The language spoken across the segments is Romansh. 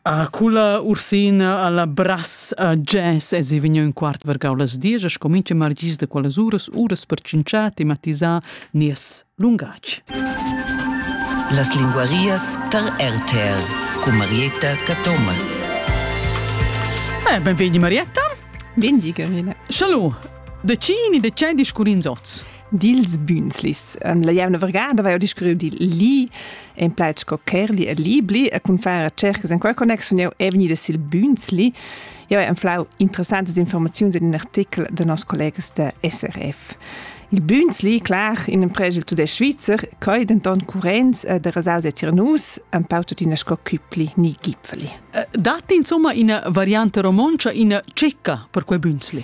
A culla Ursina alla brass a jazz esi vegniu in quart vargau las diesch e scomincha margis da quellas uras uras per tschintschar tematisar nies lungatg. Las linguarias tar RTR con Marietta Cathomas. Eh, benvegni Marietta. Bengi, Gabriele. Schalu, de cini de cei discurins oz? dils Bünzlis. La jevna vergada vai discurriu di li en plaid sco Kerli e Libli e cun far cercas en quella connexion jeu è vegnida sil Bünzli. Jeu hai enflau interessantas informaziuns in in artikel de nos collegas de SRF. Il Bünzli, clar, in empregel tudesc svizzer, coi denton currents e de rasaus e tirnus, en pau tuttina sco cüpli ni gipfeli. Datti insomma ina variante romontscha, ina tschecca per quei Bünzli?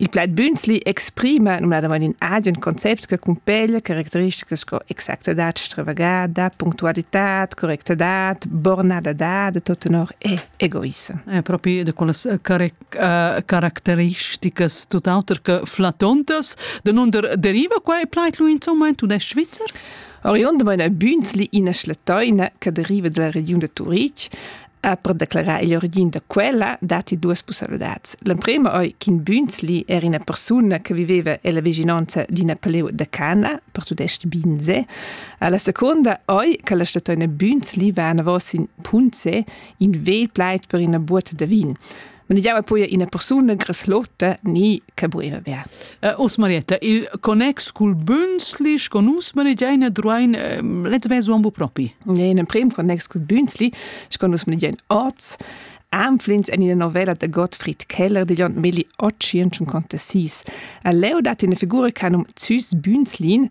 Il plaid Bünzli exprima numnadamain in agen concept che cumpeglia caracteristicas sco exactadad stravagada, punctualitad, correctadad, bornadadad e tot tenor e egoissem. È propi da quellas caracteristicas tutt'auter che flatontas. Da non deriva qua il plaid lui insomma in tudesc svizzer? Oriundamain a Bünzli ina schletoina che deriva dalla regiun da Turitg Ha per declarar il origin da quella datti duas pussaivladads. L'emprima è ch'in Bünzli era ina persuna che viveva alla vicinanza di Napoleon da Cana, per tudest Binse. La seconda è che la statuina Bünzli va anavos in Punze, in vegl plaid per ina buota da vin. Men jau poi ina persuna greslotta ni che buiva bia. Os Marietta, il connex cul Bünzli, con nus manegiaina druain let's vesu ambo propi. Ja, in prim connex cul Bünzli, con nus manegiain oz. Anflins en ina novella de Gottfried Keller di John Milli 856. Leo dat in figura canum Züs Bünzlin,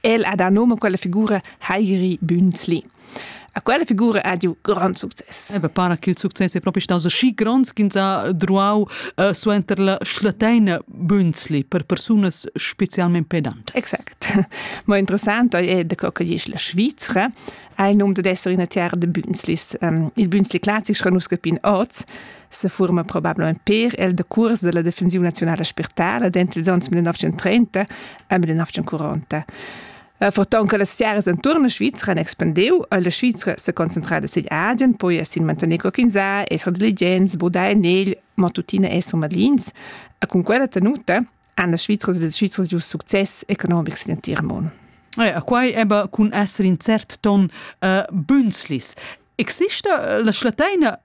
El ha da nome quella figura Heiri Bünzli. A quella figura ha giu grand success. Ebe para che il success è proprio stato così grande che ha druau uh, suenter la schlateina Bünzli per persunas specialmente pedantes. Exact. Ma interessant è de co che dice la Svizzera ha il nome di essere una terra de Bünzlis. Um, il Bünzli classico nusca pin oz, sefuorma probablamein per el da cuors dalla defensiun nazionala spirtala dentro ils onns 1930 e 1940. Eh, forton che las tiaras enturn la Svizra han expandiu, e la Svizra se concentrada sin Asien, poi sin mantener coquinza, esser diligents, budar en egl, ma tuttina esser malins. E con quella tenuta han las Svizras e les Svizras giu success economic sin entir mon. Eh, quai eba cun esser in cert ton uh, eh, bünslis. Exista eh, la schlateina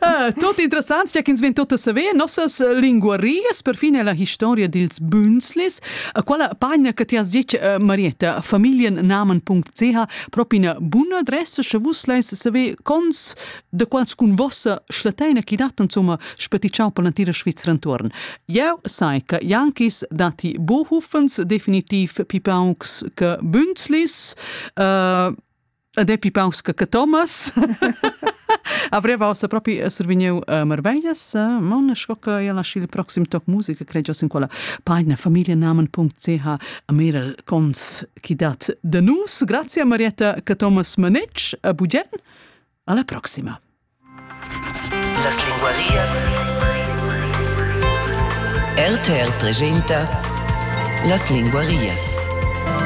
Ah, tot interessants che ins vegn tot a saver nossas linguarias perfin è la historia dils Bünzlis a quella pagina che ti has dit eh, Marietta familiennamen.ch proprio una buona adressa che vus leis saver cons de quals cun vossa schlateina chi dat insomma spaticciau per l'antira Svizzera intorn eu sai che Jankis dati Bohufens definitiv pipaunks che Bünzlis uh, E depi paus che Thomas avreva ossa propi survigniu uh, marveglias uh, mon sco che ella lasci il proxim toc musica credo in quella pagina familienamen.ch a meral cons chi dat de nus grazie a Marietta che Thomas Manich a Bugen alla proxima las linguarias RTR presenta las linguarias